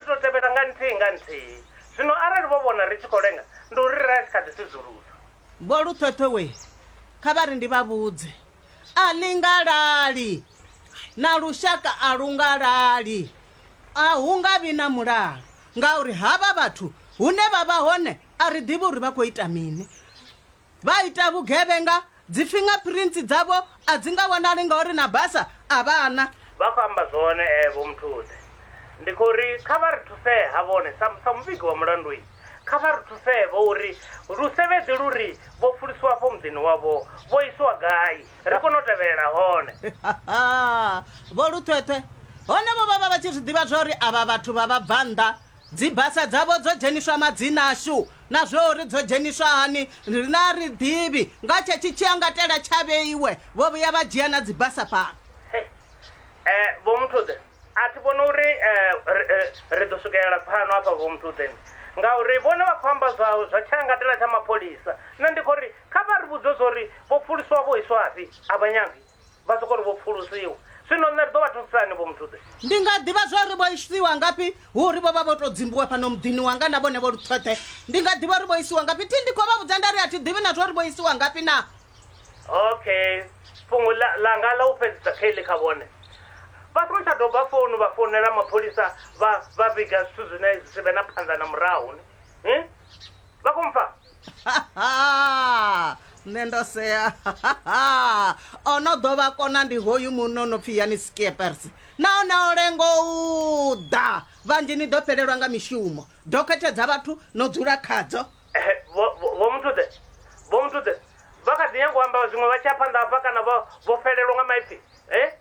Ri tou tevhela nga nthihi nga nthihi. Zwino arali vho vhona ri tshi khou lenga, ndi uri ra tshi kha ḓi sudzulusa. Vho Luṱhoṱho we kha vha ri ndi vha vhudze, a ḽi nga lali, na lushaka a lu nga lali. A hu nga vhi na mulalo, ngauri havha vhathu hune vha vha hone a ri ḓivhi uri vha khou ita mini. Vha ita vhugevhenga, dzi finger prints dzavho a dzi nga vhonali ngauri na basa a vha na. Vha khou amba zwone Vho Mthuthe. Ndi khou ri kha vha ri thusee ha vhone sa sa muvhigi wa mulandu i, kha vha ri thusee vho uri lusevheḓi lu ri vho pfulusiwa afho muḓini wavho vho isiwa gai ri kone u tevhelela hone. Vho Luthwethwe. Hone vho vha vha vha tshi zwi ḓivha zwa uri avha vhathu vha vhabvannḓa Dzibasa dzavho dzo dzheniswa madzina ashu, na zwo uri dzo dzheniswa hani riṋe a ri ḓivhi. Nga tshetshi tshiangatela tsha vheiwe, vho vhuya vha dzhia na dzibasa fhano. Hey, eh, Vho Muthude, a thi vhoni uri ri, ri ḓo swikelela pfano hafha, Vho Muthude, ni, ngauri vhone vha khou amba zwa, zwa tshiangatela tsha mapholisa. Nṋe ndi khou ri, kha vha ri vhudze zwa uri vho pfuluswa vho iswafhi, a vha nyagi. Vha sokou ri vho pfulusiwa. Zwino nṋe ri ḓo vha thusisa hani vho Muthuḓe? Ndi nga ḓivha zwa uri vho isiwa ngafhi hu uri vho vha vho tou dzimbiwa fhano muḓini wanga na vhone vho luṱhoṱhe. Ndi nga ḓivha uri vho isiwa ngafhi thi ndi khou vha vhudza nda ri a thi ḓivhi na zwa uri vho isiwa ngafhi na. Okay. Fhungo ḽa, ḽanga ḽa u fhedzisa Kelly kha vhone. Vha songo tsha doba founu vha founela mapholisa vha vha vhiga zwithu zwine zwi si vhe na phanḓa na murahu ni. Hi? vha khou mpfa nṋe ndo sea o no ḓo vha kona ndi hoyu muno no pfhi yani skiepers nahone o lengo u ḓa vhanzhi ni ḓo fhelelwa nga mishumo dokhethe dza vhathu no dzula khadzo vho muthuḓe vho muthuḓe vha kha ḓi nyanga u amba zwiṅwe vha tshi a phanḓa hafha kana vho fhelelwa nga maipfi e